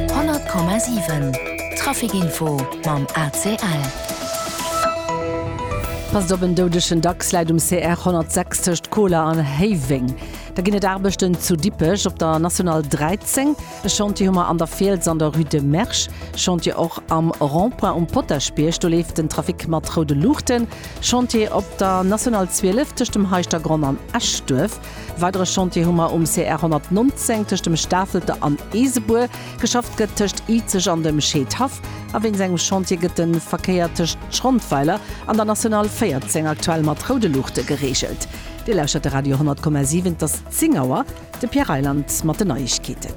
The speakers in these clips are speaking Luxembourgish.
100,7 Traficinfo mam ACL. Passt op, en doudegen Dachs läit um CR 106 tëscht Koler an Héiweng. Da ginn et Aarbechten zu Dippech op der National 13. E Chantier hu mer an der Fiels an der Rue de Mersch. Chantier och am Rond-point um Potaschbierg, do leeft den Trafic mat roude Luuchten. Chantier op der National 12 tëscht dem Heischtergronn an Eschduerf. E weidere Chantier hu mer um CR 119 tëscht dem Stafelter an Eesebuer. Geschafft gëtt tëscht Izeg an dem Scheedhaff. A wéinst engem Chantier gëtt de Verkéier tëscht Schrondweiler an der National 14 aktuell mat roude Luuchte gereegelt. Dir lauschtert de Radio 10,7, et ass 10 Auer. De Pierre Reyland mat den Neiegkeeten.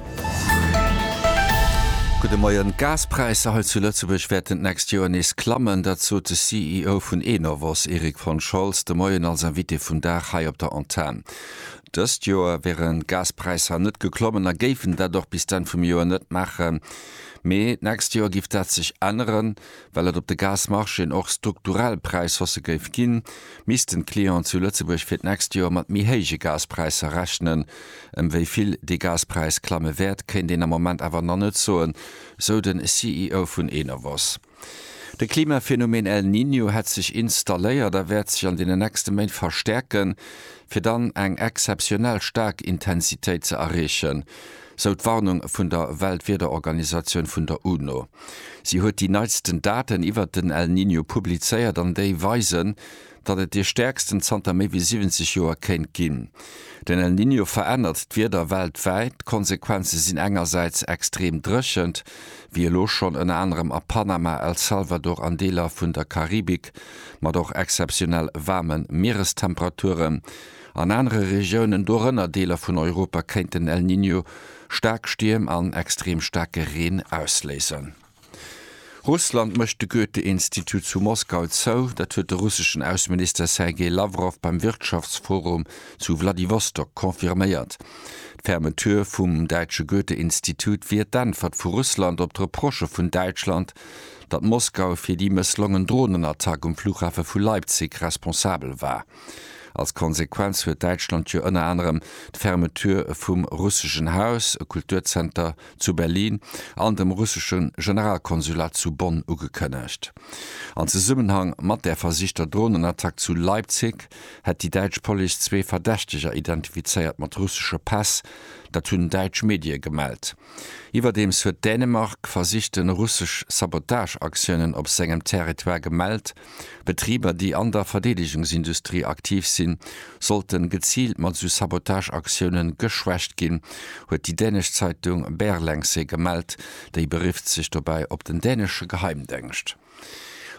Gudde Moien. D'Gaspräisser hei zu Lëtzebuerg wäerten d'nächst Joer nees klammen. Dat sot de CEO vun Enovos, Erik von Scholz, de Moien als Invité vum Dag hei op der Antenn. Dëst Joer wären d'Gaspräisser net geklommen a géifen dat och bis d'Enn vum Joer net maachen. Mee d'nächst Joer géif dat sech änneren, Well et op de Gasmarchéen och strukturell Präishausse géif ginn, missten d'Clienten zu Lëtzebuerg fir d'nächst Joer mat méi héije Gaspräisser rechnen. Ëm wéi vill dee Gaspräis klamme wäert, kéint een am Moment awer nach net soen, sou de CEO vun Enovos. De Klimaphenomeen El Niño hätt sech installéiert a wäert sech an deenen nächste Méint verstäerken, fir dann eng exzeptionell staark Intensitéit ze erreechen. sou d'Warnung vun der Weltwiederorganisatioun vun der UNO. Si huet déi neitsten Daten iwwert den El Niño publizéiert an déi weisen, datt et dee stäerksten zanter méi wéi 70 Joer kéint ginn. Den El Niño verännert d'Wieder weltwäit. D'Konsequenze sinn engersäits extrem Dréchent, wéi elo schonn ënner anerem a Panama, El Salvador an Deeler vun der Karibik, mat och exzeptionell waarme Mierestemperaturen. An anere Regiounen, dorënner Deeler vun Europa, kéint den El Niño staark Stierm an extrem staarke Reen ausléisen. Russland mécht de Goethe-Institut zu Moskau zou. Dat huet de russeschen Ausseminister Sergei Lawrow beim Wirtschaftsforum zu Wladiwostok confirméiert. D'Fermeture vum däitsche Goethe-Institut wier d'Äntwert vu Russland op d'Reprochë vun Däitschland, datt Moskau fir déi mësslongen Dronenattack um Flughafe vu Leipzig responsabel war. Als Konsequenz huet Däitschland jo ënner anerem d'Fermeture vum Russischen Haus, e Kulturzenter zu Berlin, an dem russesche Generalkonsulat zu Bonn ugekënnegt. An Zesummenhang mat där versichter Dronenattack zu Leipzig hätt déi däitsch Police zwee Verdächteger identifizéiert mat russesche Päss. Dat hunn däitsch Medie gemellt. Iwwerdeems huet Dänemark versichte russesch Sabotageaktiounen op sengem Territoire gemellt. Betriber, déi an der Verdeedegungsindustrie aktiv sinn, sollten geziilt mat esou Sabotageaktiounen geschwächt ginn, huet déi dänesch Zeitung Berlengse gemellt. Déi berifft sech dobäi op den dänesche Geheimdengscht.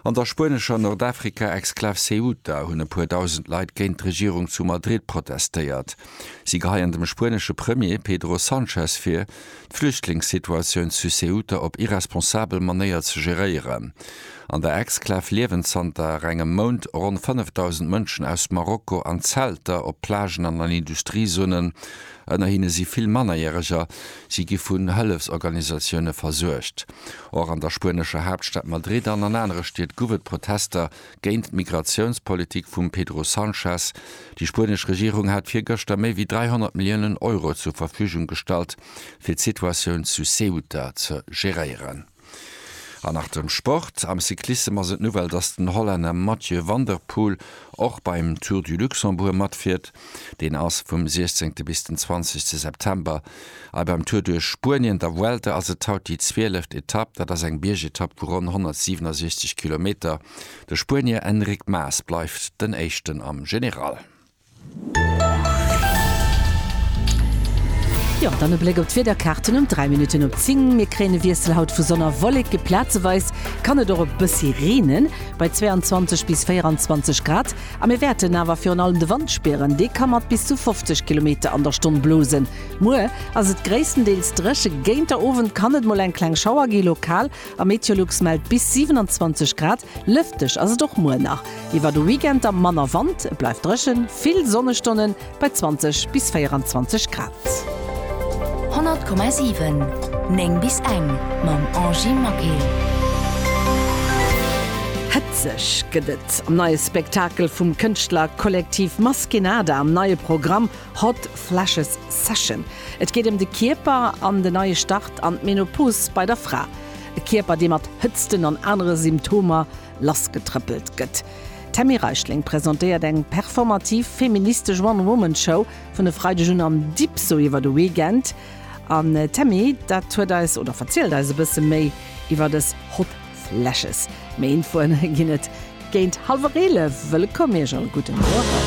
An der spuenescher Nordafrika-Exklav Ceuta hunn e puer dausend Leit géint d'Regierung zu Madrid protestéiert. Si geheien dem spuenesche Premier Pedro Sanchez vir, d'Flüchtlingssituatioun zu Ceuta op irresponsabel Manéier ze geréieren. An der Exklav liewen zanter engem Mount ronn 5.000 Mënschen aus Marokko an Zelter, op Plagen an an Industriezonen. Ënner hinne si vill Mannerjäreger. Si gi vun Hëllefsorganisatioune versuergt. Och an der spuenescher Haaptstad Madrid an an anere Stied gouf et Protester Géint d'Migratiounspolitik vum Pedro Sanchez. Déi spuenesch Regierung hat virgëschter méi wéi 300 Milliounen Euro zur Verfügung gestallt, fir d'Situatioun zu Ceuta ze geréieren. An nach dem Sport. Am Cyclissem ass et d'Nouvelle, dass den Hollänner Mathieu van der Poel och beim Tour du Luxembourg matfiert. Deen ass vum 16 bis den 20 te September. Ei beim Tour duerch Spuenien, der Vuelta, ass et haut déi zwieleft Etapp. Dat ass eng Biergetapp vu ronn 167 Kilometer. De Spuenier Enric Mas bleift den Éischten am General. Jo, dann e Bléck op d'Wiederkaarten um 3 Minutten op 10. Mir kréien e Wiessel haut vu Sonn a Wolleke, plazeweis kann et och e bëssi reenen. Bei 22 bis 24 Grad A mir wäerten awer virun allem de Wand spieren, dee ka mat bis zu 50 Kilometer an der Stonn blosen. Muer ass et gréisstendeels dréche, géint der Owend kann et mol eng kleng Schauer gi lokal a Meteolux mellt bis 27 Grad. Lëfteg ass et och muer nach. Iwwer de Weekend da manner Wand, et bleift dréchen, vill Sonnestonnen. Bei 20 bis 24 Grad. 100,7, 9 bis eng mam Angie Maquet. Hëtzeg gëtt et am neie Spektakel vum Kënschtlerkollektiv Maskenada am neie Programm Hot Flashes Session. Et geet ëm de Kierper an den neie Start an d'Menopause bei der Fra. E Kierper, dee mat Hëtzten an anere Symptomer lassgetrëppelt gëtt. D'Tammy Reichling presentéiert eng performativ feministesch One-Woman-Show vun e Freideg un am Dipso iwwer de Weekend. An d'Tammy dat huet eis oder verzielt eis e bësse méi iwwer des Hot Flashes. Méi Infoen ginn et géint hallwer 11. Wëllkomm Iech all gudden Owend.